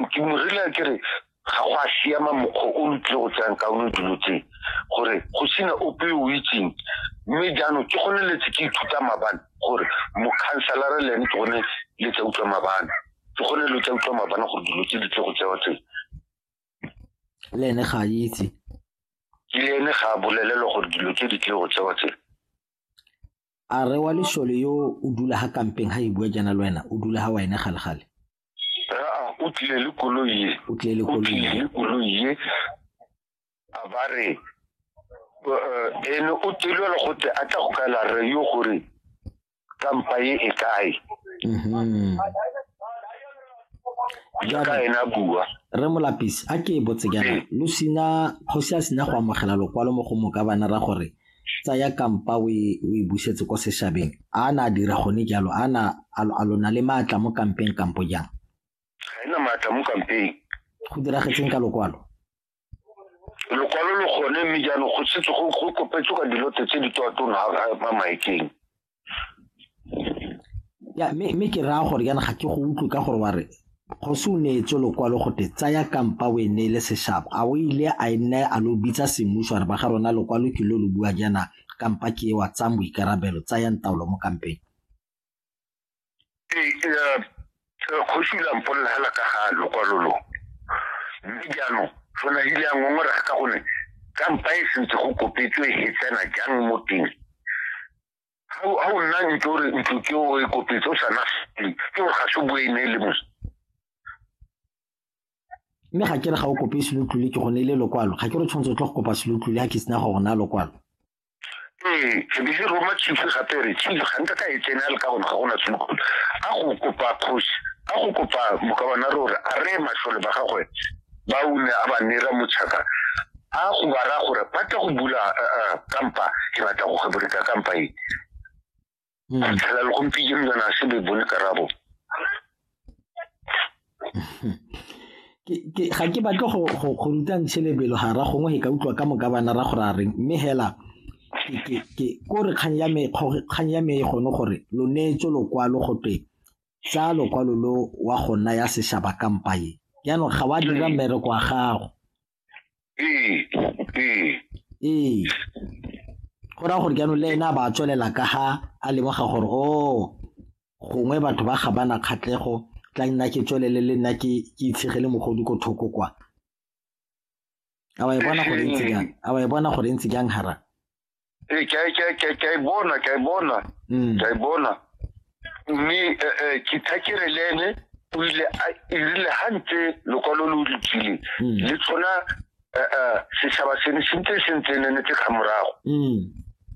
modimo re le ke re ga go a siama mokgwa o lo tlile go tsayang kaone dilo tse gore go sena ope o itseng mme jaanong ke gone letse ke ithuta mabane gore mokhanselara le ene ke gone le tsa utlwa mabane ke gone lo tsa utlwa mabane gore dilo tse di tle go tsewa tse le ene ga a itse le ene ga a bolelelwa gore dilo tse di tle go tsewa tse A re wa lešole yo o dula ha kampeng ha e bua jana le wena o dula ha wena gale gale o tlile le koloi ye o tlile le koloi ye a ba re eh, ene o telwela gote a tla go kaela re yo gore kampa ye e kae mhm. jaaka ena bua re molapisi a ke e botse jaana eh. lo sina kgosi a sina go amogela lokwalo mo go moka bana ra gore tsaya kampa o e busetse kwa sešhabeng a na a dira gone jalo a na a lona le maatla mo kampeng kampo jang ga ena maatla mo kampeng go diragetseng ka lokwalo lokwalo lo gone mme jaanong go setse go kopetswe ka dilote tse di toatona a maekeng ya mme mme ke raya gore yana ga ke go utlwe ka gore wa re kgosi o neetswe lokwalo gote tsaya kampa o e neele seshabo a o ile a e nne a lo bitsa semmuso a re ba ga rona lokwalo ke lo lo bua jaana kampa ke e wa tsang boikarabelo tsayang taolo mo kampeng kgosi o lampolela hela ka ga lokwalo lo mme jaanong fona ile a ngongorega ka gone kampa e sentse go kopetswe e tsena jang mo teng ga o nna ntlo re ntlo ke o e kopetse o sa na ke gore ga se boe ne e le mose mme ga ke re ga o kope selotlole ke gone e le lokwalo ga ke re tshwanetse o tlo go kopa selotlole ga ke sena go rona lokwalo ee ke be ke roma chief gape re chief ga nka ka e tsena le ka gona ga gona tshokolo a go kopa kgosi a go kopa mokabana re gore a re matlhole ba gagwe ba o ne a ba nera motšhaka a go ba raya gore ba tla go bula kampa ke batla go kgeboleta kampa e hmm. a tlhela le gompitse mjana a se be bone karabo ga ke batle go rutang selebelo ga ra gongwe e ka utlwa ka moka bana ra gore a reng mme hela ko re kgang ya me kgang ya me e gone gore lo neetse lokwalo go twe tsa lokwalo lo wa gona ya seshaba kampaye jaanong ga wa dira mmereko wa gago ee ee ee go raya gore jaanong le ene a ba a tswelela ka ga a lemoga gore o oh, gongwe batho ba ga bana kgatlego tla nna ke tswelele le nna ke itshegele mogodi ko thoko kwa a wa e bona gore ntse jang a wa e bona gore ntse jang hara eh, ke a- ke a- ke a- ke a e bona ke a e bona Mm. ke a e bona mme eh, eh, ke thakere le ene o ile a- e rile ga ntse lokwalo lo le tswile Mm. le tshwana eh, eh, setšhaba sene se ntse se ntse ne netse ka morago Mm.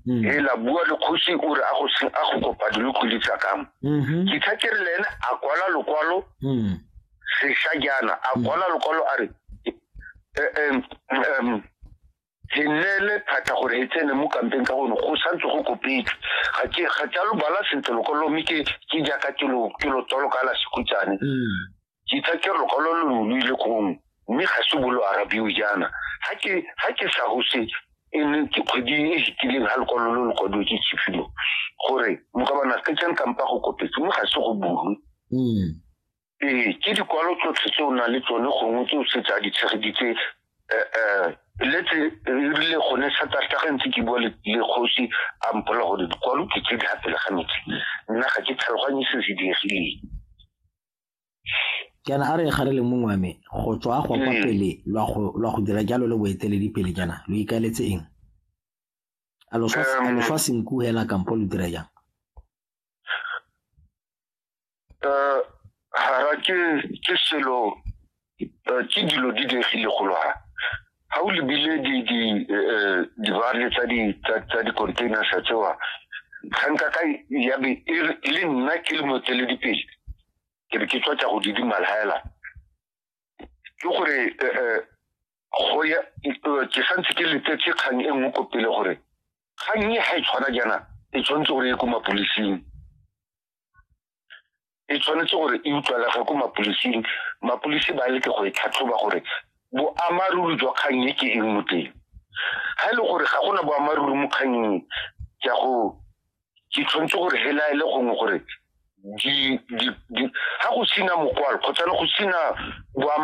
Mm. e la bua le kgosi o re a go se- a go kopa dinokodi tsa kamo Mhm. ke thakere le ene a kwala lokwalo Mm. sešajana a kwala lokwalo a re eh, em, em, he neele phata gore he tsene mo kampeng ka gone go santse go kopetswe ga ke ga ke lo bala sentle lokwalo mme ke ke jaaka ke lo ke lo tsolo ka la sekutsane mm. ke tsa ke lokwalo lo lo ile gongwe mme ga se bolo arabiwe jaana ga ke ga ke sa gose e ne ke kgwedi e fitileng ga lokwalo lo lo kwadiwe ke tshifilo gore mokabana ke tsene kampa go kopetse mme ga se go bulwe mm. ee ke dikwalo tsotlhe tse o nang le tsone gongwe tse o setse a di tshegeditse um eh, eh, letse rile gone satarta ga ntse ke bua le kgosi a mpola gore dikwalo ke tse di gapele ga metsi nna ga ke tlhaloganye se se diegileng jaana a re ga re le mongwe wa me go tswa go kwa mm. pele lwa go dira jalo le boeteledipele jaana lo ikaeletse eng a loswa senku hela kampo lo dira jang um hara ke ke selo um ke dilo di diegile golo ha ga o lebile dibale eh, eh, tsa di-containers tsewa kganka ka yabe e, e le nna ke le motsweledipele ke be ke tswa tsa go didimala hela ke gore eh, go ya ke santse ke letetse kgang e nngwe ko pele gore kgang e ga e tshwana jaana e tshwanetse gore e ko mapolising e tshwanetse gore e utlwalege ko mapodising mapodisi ba leke go e tlhatlhoba gore boammaaruri jwa kgang e ke eng mo teng ga e le gore ga gona boammaaruri mo kgangeng ke a go ke tshwanetse gore helaele gongwe gore ga go sina mokwalo kgotsa le go sina